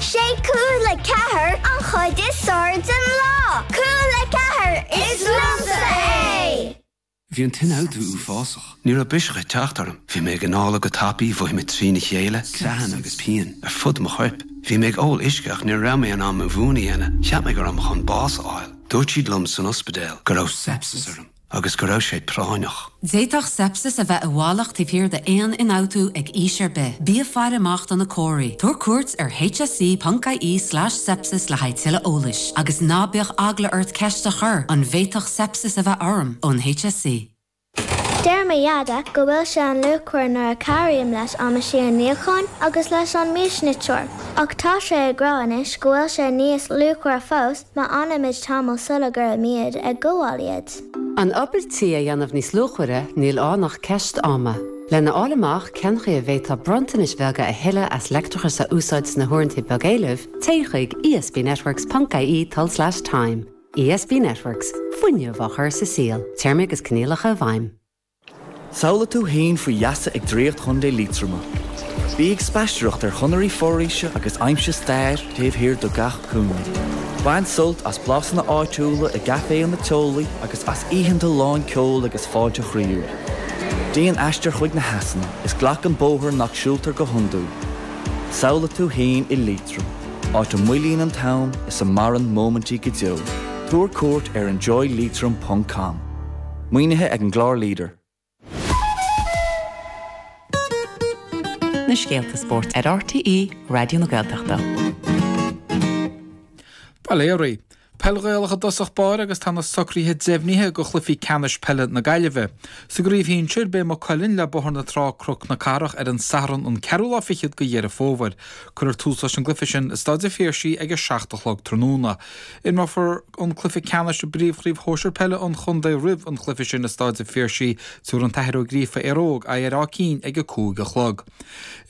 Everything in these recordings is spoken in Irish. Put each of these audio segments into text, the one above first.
Sé Cúla Ceathair an chuid is fearr den lá. Cúla Ceathair, is liomsa é! Bhí an t-ionfhabhtú uafásach. Ní raibh biseach ag teacht orm. Bhí mé ag anála go tapaidh, mhothaigh mé trína chéile, creathanna agus pian ar fud mo choirp. Bhí mé ag ól uisce ach ní raibh mé in ann mo mhún a dhéanamh. Cheap mé go raibh mé chun bás a fháil. Dúirt siad liom san ospidéal go raibh sepsis orm. agus go raibh sé práinneach. D'fhéadfadh sepsis a bheith i bhfalach taobh thiar d'aon ionfhabhtú ag aois ar bith. Bí ag faire amach do na comharthaí. Tabhair cuairt ar hse.ie slash sepsis le haghaidh tuilleadh eolais, agus ná bíodh eagla ort ceist a chur, an bhféadfadh sepsis a bheith orm? ón HSE. Deir mo Dheaide go bhfuil sé an-luachmhar nuair a chabhraím leis an meaisín níocháin agus leis an miasniteoir, ach tá sé ag rá anois go bhfuil sé níos luachmhaire fós Má fhanaimid tamall sula gcuirfimid ag gabháil iad. An obair tí a dhéanamh níos luachmhaire, níl ann ach ceist ama. Lena fháil amach cén chaoi a bhféadfá bronntanais bheaga a thuilleamh as leictreachas a úsáid sna huaireanta beagéilimh, téigh chuig ESBnetworks ponc IE tulslais time. ESB Networks, fuinneamh á chur sa saol. Téarmaí agus coinníollacha i bhfeidhm. Samhlaigh tú fhéin faoi gheasa ag draíocht Chontae Liatroma. Bí ag spaisteoireacht ar chonairí foraoise agus aimsigh stair taobh thiar de gach cúinne. Bain sult as blasanna áitiúla i gcaiféanna teolaí agus as oícheanta lán ceoil agus fáilte chroíúil. Déan aistear chuig na heasanna is glac an bóthar nach siúltar go hiondúil. Samhlaigh tú fhéin i Liatroim, áit a moillíonn an t-am is a maireann móimintí go deo. Tabhair cuairt ar enjoyleitrim.com. Maoinithe ag an gclár leader. na scéalta spóirt ar RTÉ Raidió na Gaeltachta. Bail ó Dhia oraibh. Peil Ghaelach i dtosach báire agus tá na socruithe deimhnithe do chluichí ceannais peile na Gaillimhe. Sa gcraobh shinsir, beidh Maigh Cuilinn le Bóthar na Trá Cnoc na Cathrach ar an Satharn an ceathrú lá fichead de Dheireadh Fómhair. Cuirfear tús leis an gcluiche sin i Stáid an Phiarsaigh ag a seacht a chlog tráthnóna. Imreofar an cluiche ceannais i bPríomhchraobh Shóisir Peile an Chontae roimh an chluiche sin i Stáid an Phiarsaigh, tabharfaidh an tAthair Ó Gríofa, Éire Óg, aghaidh ar Áth Cinn ag a cúig a chlog.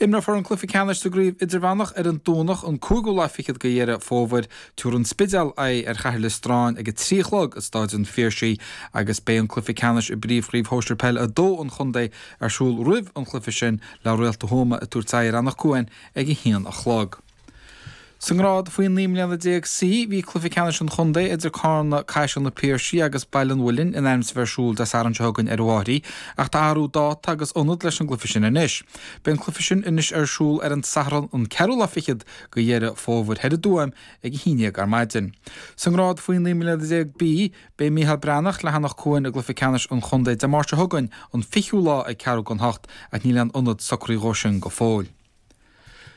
Imreofar an cluiche ceannais sa gCraobh Idirmheánach ar an Domhnach an cúigiú lá fichead de Dheireadh Fómhair, tabharfaidh an Spidéal, aghaidh ar Chathair Loistreáin ag a trí a chlog i Stáid an Phiarsaigh agus beidh an cluiche ceannais i bPríomhchraobh Shóisir Peile 2 an Chontae ar siúl roimh an chluiche sin le Réalta Thuama ag tabhairt aghaidh ar Anach Cuain ag a haon a chlog. Sa ngrád faoi 19 mbliana C, bhí cluiche ceannais an chontae idir Carna, Caiseal, Na Piarsaigh agus Baile an Mhuilinn in ainm is a bheith ar siúl Dé Sathairn seo chugainn ar na Maithrí, ach tá athrú dáta agus ionad leis an gcluiche sin anois. Beidh an cluiche sin anois ar siúl ar an Satharn an ceathrú lá fichead de Dheireadh Fómhair thoir i dTuaim ag a haon déag ar maidin. Sa ngrád faoi 19 mbliana B, beidh Micheál Breathnach le hAnach Cuain i gcluiche ceannais an chontae Dé Máirt seo chugainn, an fichiú lá ag ceathrú chun a hocht, ach níl aon ionad socraithe dhó sin go fóill.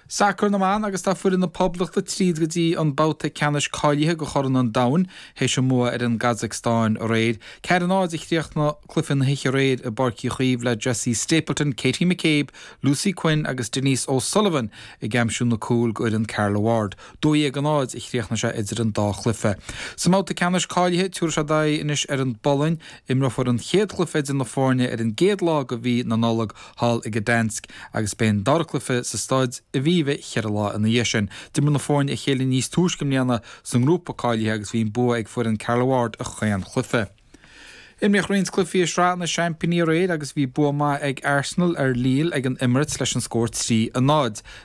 Sacar na mBan agus tá foireann na Poblachta tríd go dtí an babhta ceannais cáilithe go Chraobh an Domhain théis a mbua ar an gCazacstáin aréir. Ceathair a náid a chríochnaigh cluiche na hoíche aréir i bPáirc Uí Chaoimh le Jessie Stapleton, Katie McCabe, Lucy Quinn agus Denise O'Sullivan ag aimsiú na gcúl d'fhoireann Carla Ward. Dó dhéag a náid a chríochnaigh sé idir an dá chluiche. Sa mbabhta ceannais cáilithe tiúrfaidh siad aghaidh anois ar an bPolainn. Imreofar an chéad chluiche idir na foirne ar an gcéad lá de mhí na Nollag. thall i Gdansk agus beidh an dara cluiche sa staid Aviva cheithre lá ina dhiaidh sin. D'imir na foirne a chéile níos túisce i mbliana sa ngrúpa cáilithe agus bhí an bua ag foireann Carla Ward i chaon chluiche. Imríodh roinnt cluichí i Sraith na Seaimpíní aréir agus bhí bua maith ag Arsenal ar Lille ag an Emirates leis an scór 3 a 0.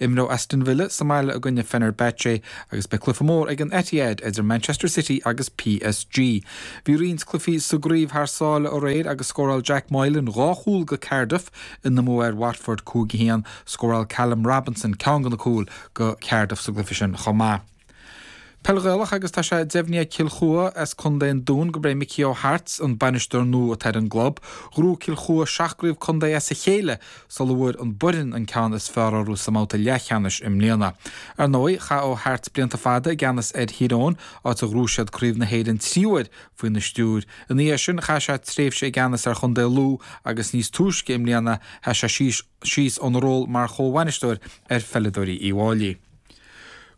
Imreoidh Aston Villa sa mbaile i gcoinne Fenerbahce agus beidh cluiche mór ag an Etihad idir Manchester City agus PSG. Bhí roinnt cluichí sa gcraobh thar sáile aréir agus scóráil Jack Moylan dhá chúl go Cardiff ina mbua ar Watford 5 1. Scóráil Callum Robinson ceann de na cúil go Cardiff sa gcluiche sin chomh maith. Peil Ghaelach agus tá sé deimhnithe ag Cill Chua as Co an Dúin go b é Micí Ó hAirt an bainisteoir nua atá ar an gclub. Ghnóthaigh Cill Chua seacht gcraobh contae as a chéile sula bhfuair an Boireann an ceann is fearr orthu sa mbabhta leathcheannais i mbliana. Ar ndóigh, chaith Ó hAirt blianta fada i gceannas ar Thír Eoghain, áit ar ghnóthaigh siad craobh na hÉireann trí uair faoina stiúir. Ina dhiaidh sin, chaith sé tréimhse i gceannas ar Chontae Lú agus níos túisce i mbliana, sheas sé síos óna ról mar chomhbhainisteoir ar pheileadóirí Uí bhFáilí.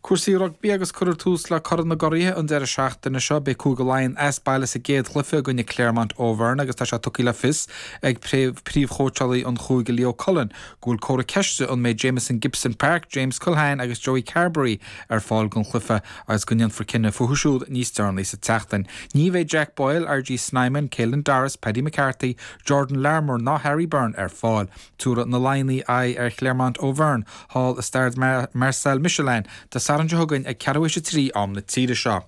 Cúrsaí rugbaí agus cuirfear tús le Corn na gCuraithe an deireadh seachtaine seo. Beidh Cúige Laighean as baile sa gcéad chluiche i gcoinne Clermont Auvergne agus tá sé tugtha le fios ag príomhchóitseálaí an chúige Leo Cullen go bhfuil comhartha ceiste an mbeidh Jamison Gibson-Park, James Culhane agus Joey Carbery ar fáil don chluiche agus go ndéanfar cinneadh fúthu siúd níos deireanaí sa tseachtain. Ní bheidh Jack Boyle, RG Snyman, Caelan Doris, Paddy McCarthy, Jordan Larmour ná Harry Byrne ar fáil. Tiúrfaidh na Laighnigh aghaidh ar Clermont Auvergne thall i Stade Marcel Michelin Dé Sathairn seo chugainn ag ceathrú théis a trí am na tíre seo.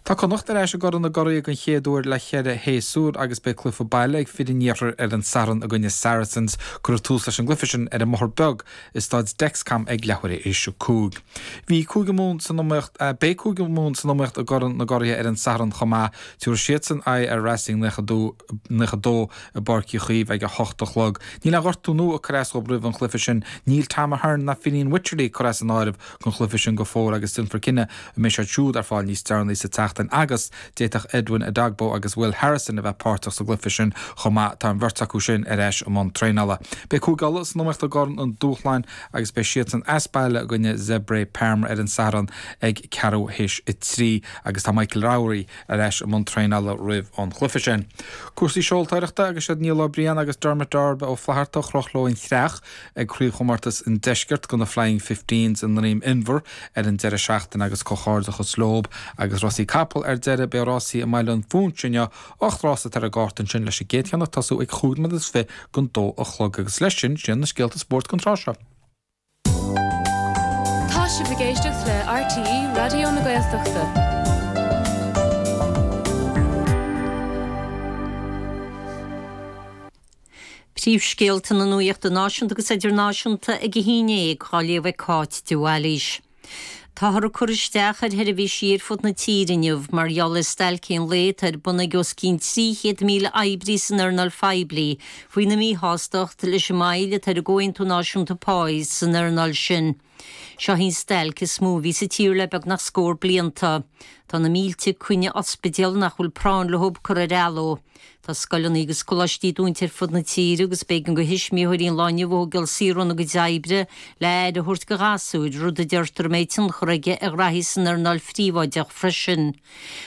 Tá Connacht ar ais i gCorn na gCuraithe den chéad uair le cheithre shéasúr agus beidh cluiche baile ag fir an iarthair ar an Satharn i gcoinne Saracens. Cuirfear tús leis an gcluiche sin ar an mBóthar Beag i Staid Dexcom ag leathuair tar éis a cúig. Bhí Cúige Mumhan san iomaíocht, beidh Cúige Mumhan san iomaíocht i gCorn na gCuraithe ar an Satharn chomh maith. Tiúrfaidh siadsan aghaidh ar Racing 92. i bPáirc Uí Chaoimh ag a hocht a chlog. Níl aon ghortú nua ag cur as dhób roimh an chluiche sin. Níl Tom Ahern ná Fineen Wycherley curtha as an áireamh don chluiche sin go fóill agus déanfar cinneadh an mbeidh siad siúd ar fáil níos deireanaí sa tseachtain agus d'fhéadfadh Edwin Edogbo agus Will Harrison a bheith páirteach sa gcluiche sin chomh maith. Tá an bheirt acu sin ar ais i mbun traenála. Beidh Cúige Uladh san iomaíocht i gCorn an Dúshláin agus beidh siadsan as baile i gcoinne Zebre Parma ar an Satharn ag ceathrú théis a trí agus tá Michael Lowry, ar ais i mbun traenála roimh an chluiche sin. Cúrsaí seoltóireachta agus is iad Niall Ó Briain agus Dermot Darby Ó Flatharta a chroch leo an chreach ag Craobhchomórtas an Deiscirt de na Flying Fifteens i nDrom Inbhir ar an deireadh seachtaine agus comhghairdeachas leob agus rásaí capall ar deireadh beidh rásaí i mBaile an Phúinse inniu, ocht rása atá ar an gcárta ansin leis an gcéad cheann ag tosú ag chúig nóiméad is fiche don dó a chlog agus leis sin, sin na scéalta spóirt don tráth seo. Tá sibh ag éisteacht le RTÉ Raidió na Gaeltachta. Príomhscéalta na nuachta náisiúnta agus idirnáisiúnta ag a 11 dhá léamh ag Cáit de Bhailís. Táthar ag cur isteach ar sheirbhísí ar fud na tíre inniu mar gheall ar stailc aon lae atá ar bun ag os cionn 300,000 oibrí san earnáil phoiblí faoina míshástacht leis an moill atá ar an gcomhaontú náisiúnta páí san earnáil sin. Seo í an stailc is mó a bhí sa tír le beagnach scór blianta. Tá na mílte coinne ospidéal nach bhfuil práinn leo curtha ar athló. Tá scoileanna agus coláistí dúnta ar fud na tíre agus b'éigean do thuismitheoirí an lá inniu a thógáil saor óna gcuid oibre le aire a thabhairt do ghasúir, rud a deirtear a mbeidh tionchar aige ar ghraithí san earnáil phríobháideach freisin.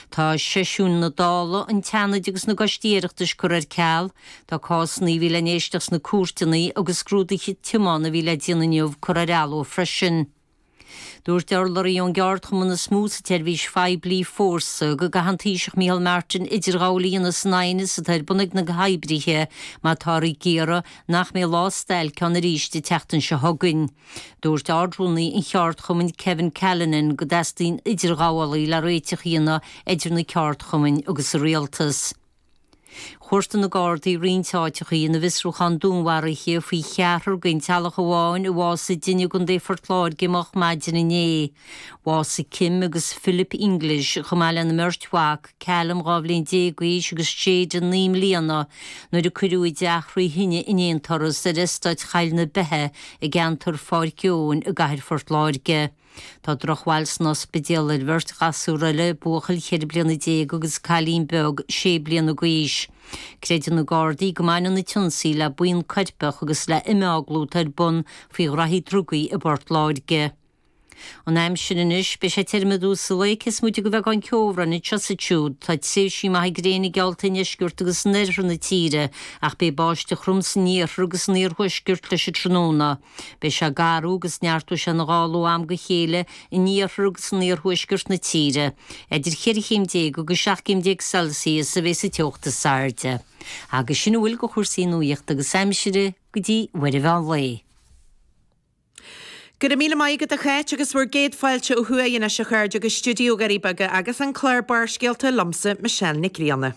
Tá seisiúin na Dála, an tSeanaid agus na gcoistí Oireachtais curtha ar ceal, tá cásanna a bhí le n-éisteacht sna cúirteanna agus scrúduithe tiomána a bhí le déanamh inniu curtha ar athló freisin. Dúirt urlabhraí ón gceardchumann is mó sa tseirbhís phoiblí, Fórsa, go gcaithfidh an Taoiseach Micheál Martin idirghabháil a dhéanamh san aighneas atá ar bun ag na hoibrithe má táthar ag iarraidh nach mbeidh lá stailce ann arís an tseachtain seo chugainn. Dúirt Ard-Rúnaí an cheardchumainn, Kevin Callinan, go dteastaíonn idirghabhálaí le réiteach a dhéanamh idir na ceardchumainn agus an Rialtas. Chuartaigh na Gardaí roinnt áiteachaí ina bhfiosrúchán dúnmharaithe faoi cheathrar d'aon teaghlach amháin a bhásaigh i dtine i gContae Phort Láirge moch maidin inné. Bhásaigh Kim agus Philip English, chomh maith lena mbeirt mhac, Callum, dhá bhliain déag d'aois, agus Jayden, naoi mbliana, nuair a cuireadh a dteach thrí thine in aon turas ar Estáit Choill na Beithe i gceantar Pháirc Eoin i gcathair Phort Láirge. Tá drochbhail san ospidéal ar bheirt ghasúr eile, buachaill ceithre bliana déag agus cailín beag sé bliana d'aois. Creideann na Gardaí go mbaineann an t-ionsaí le buíon coirpeach agus le imeaglú atá ar bun faoi ghraithí drugaí i bPort Láirge. An aimsir anois, beidh sé tirim i dtús an lae cé is moite de bheagán ceobhráin anseo is ansiúd. Tá tréimhsí maithe gréine geallta i ndeisceart agus in oirthear na tíre ach beidh báisteach throm san iarthar agus san iarthuaisceart leis an tráthnóna. Beidh sé ag géarú agus neartóidh sé ina ghála ó am go chéile in iarthar agus in iarthuaisceart na tíre. Idir 14 chéim agus 17 gcéim Celsius a bheidh sa teocht is airde. Agus sin a bhfuil de chúrsaí nuachta agus aimsire go dtí uair an mheán lae. Go raibh míle maith agat a Cháit agus bhur gcéad fáilte ó thuaidh anois a chairde go stiúideo na nDoirí Beaga agus an clár Barrscéalta liomsa Michelle Nic Grianna.